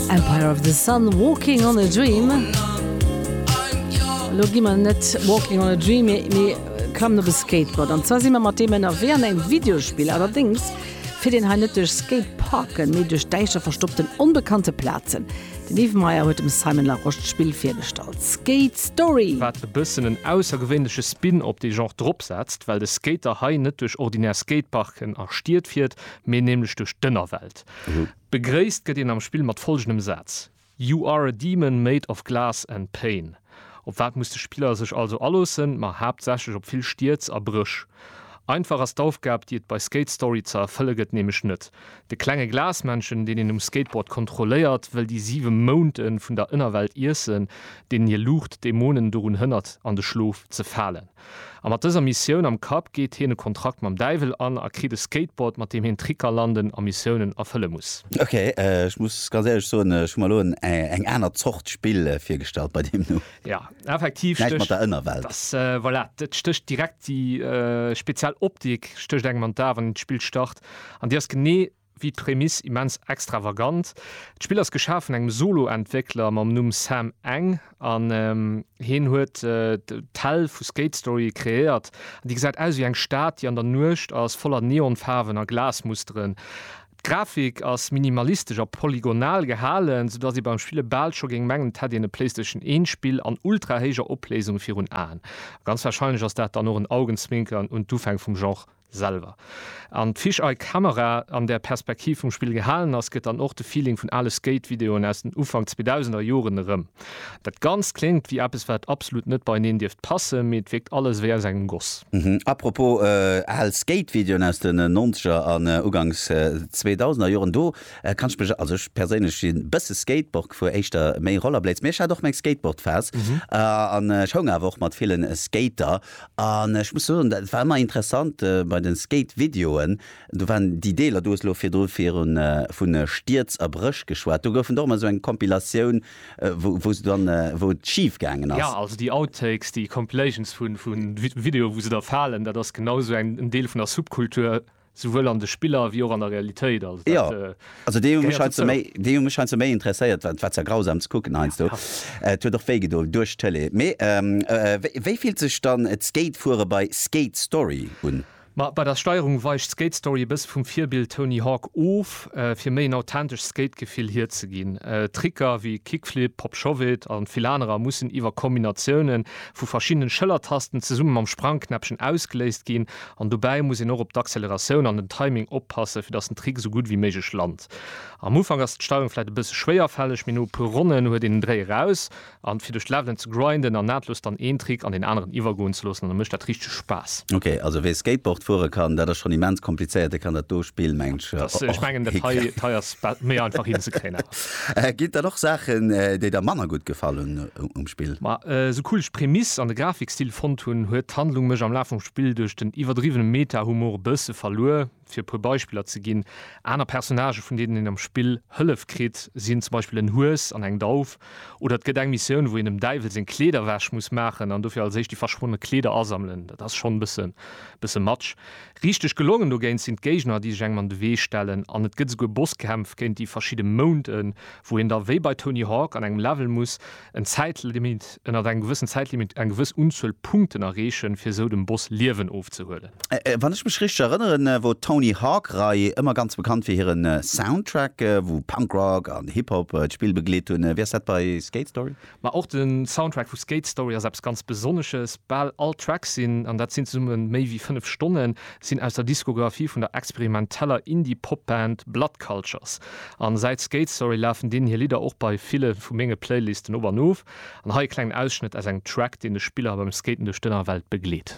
Empire of the Sun, Walking on a Dream. Lo gi mer net Walking on a Dream, mee klammen op e Skateboard. An zwar si mer mat deem ënnerwee an engem Videospill. Allerdéngs fiert een hei net duerch Skateparken, mee duerch däischter verstoppten, onbekannte Plazen. Den Yves Meyer huet dem Simon Larosche d'Spill virgestallt, Skate Story. Wat e bëssen en aussergewéinleche Spin op dee Genre drop setzt, well de Skater hei net duerch ordinär Skateparken a Stied fiert, mee nämlech duerch d'Ënnerwelt. Begréisst gëtt een am Spill mat folgendem Saz, You are a demon made of glass and pain. Op wat muss de Spiller sech also aloossen? Ma haaptsächlech op vill Stierz a Bréch. Einfach ass d'Aufgab, déi et bei Skate Story ze erfëlle gëtt, nämlech net. De klenge Glasmännchen, deen een um Skateboard kontrolléiert, wëll déi siwe Mounten vun der Ënnerwelt iessen, deenen hir Luucht d'Dämonen dorun hënnert, an de Schlof ze falen. A mat dëser Missioun am Kapp geet hien e Kontrakt mam Däiwel an a kritt e Skateboard, mat deem hien Tricker landen a Missiounen erfëlle muss. Ok, ech muss ganz éierlech soen, ech hu mer elo eng aner Zort Spill virgestallt bei deem Numm. Jo, effektiv stécht. Näischt mat der Ënnerwelt. Dass, voilà, et stécht direkt déi speziell Optik stécht engem an d'A wann een d'Spill start. An déi ass genee Wéi d'Prämiss immens extravagant. D'Spill ass geschaf vun engem Solo-Entwéckler mam Numm Sam Eng an hien huet d'Hell vu Skate Story kreéiert. Déi gesäit aus wéi eng Stad, déi an der Nuecht ass, voller Neonfaarwen a Glasmusteren. D'Grafik ass minimalistesch a polygonal gehalen, sou dass ee beim Spille bal scho géing mengen, et hätt een e Playstation 1 Spill an ultra-héijer Opléisung virun Aen. A ganz warscheinlech ass dat dann och en Augenzwinkern un d'Ufäng vum Genre. Selwer. An d'Fish Eye Camera an der Perspektiv vum Spill gehalen ass, gëtt dann och de Feeling vun ale Skate Videoen aus den Ufank 2000er Joren erëm. Dat Ganzt kléngt wéi eppes wat absolut net beieneen dierft passen, mee et wierkt alles wéi aus engem Goss. Apropos al Skate Videoen aus den Nonzeger an Uganks Zweedausender Joren, do kann ech mech, also ech perséinlech si bësse Skateboard gefuer, éischter méi Rollerblades, mee ech hat och meng Skateboard Phase an ech houng awer och mat villen Skater. An ech muss soen, et war ëmmer interessant bei de Skate-Videoen, do waren déi Deeler, du hues elo virdru vu Stierz a Bréch geschwat, do gouf et och ëmmer esou eng Compilatioun, wou se dann, wou et schif gaangen ass. Jo, also déi Outtakes, déi Compilations vu Videoen, wou se da falen, dat ass genau esou en Deel vun der Subkultur. Souwuel an de Spiller wéi och an der Realitéit. Also dat Jo, also déi hu mech gehéiert heiansdo dozou. méi, déi hu mech heiansdo méi interesséiert, well et war zwar grausam ze kucken heiansdo, et huet och wéi gedoen duerch d'Tëlee. Mee wéi, wéi fillt sech dann d'Skatefuere bei Skate Story un? Ma bei der Steierung weicht Skate Story e bësse vum Virbild Tony Hawk of, fir méi en authentescht Skate-Gefill hierzeginn. Tricker wéi Kickflip, Pop Shove-It an vill anerer mussen iwwer Kombinatioune vu verschiddenen Schëllertasten zesumme mam Sprangknäppchen ausgeléist ginn An dobäi muss een och op d'Acceleratioun an den Timing oppassen, fir datt den Trick esou gutt wéi méiglech lant. Am Ufank ass d'Steierung vläit e bësse schwéierfälleg, mee no e puer Ronnen huet een den Dréi eraus. An fir duerch d'Levelen ze grinden an nahtlos dann een Trick an deen aneren iwwergoen ze loossen, da mécht dat richteg Spaass. Ok, also wee Skateboard fuere kann, dat ass schonn immens komplizéiert, dee kann dat do Spill mengen ech och hinkréien. Ech mengen dat hei hei ass méi einfach hinzekréien awer. Ginn et dann och Saachen, déi der manner gutt gefall hunn? um Spill. Ma sou cool ech Prämiss an de Grafikstil fonnt hunn, huet d'Handlung mech am Laf vum Spill duerch den iwwerdriwwene Meta-Humor e bësse verluer. Fir e puer Beispiller ze ginn, Aner Personnagë vun deenen een am Spill Hëllef kritt, sinn zum Beispill en Hues an eng Dauf, oder et gëtt eng Missioun wou een dem Däiwel seng Kleeder wäsch muss maachen an dofir als éischt déi verschwonne Kleeder asammelen. Dat ass schonn e bësse much. Richteg gelongen dogéint sinn d'Géigner déi sech engem an de Wee stellen an et gëtt esouguer Bosskämpf géint déi verschidde Mounten, wou een da wéi bei Tony Hawk an engem Level muss en Zäitlimit, ënnert engem gewëssen Zäitlimit eng gewëss Unzuel Punkten erreechen, fir esou dem Boss Liewen ofzehuelen. Wann ech mech richteg erënneren, wor d'Tony Hawk-Rei ëmmer ganz bekannt fir hiren Soundtrack, wou Punk-Rock an Hip-Hop d'Spill begleet hunn. Wéi ass dat bei Skate Story? Ma och de Soundtrack vu Skate Story ass eppes ganz Besonnesches. Bal all Tracks sinn, an dat sinn zesumme méi wéi 5 Stonnen, sinn aus der Diskografie vun der experimenteller Indie-Pop-Band Blood Cultures. An säit Skate Story lafen deenen hir Lidder och bei ville vu menge Playlisten op an of. An hei e klengen Ausschnëtt aus engem Track, deen de Spiller beim Skaten duerch d'Ënnerwelt begleet.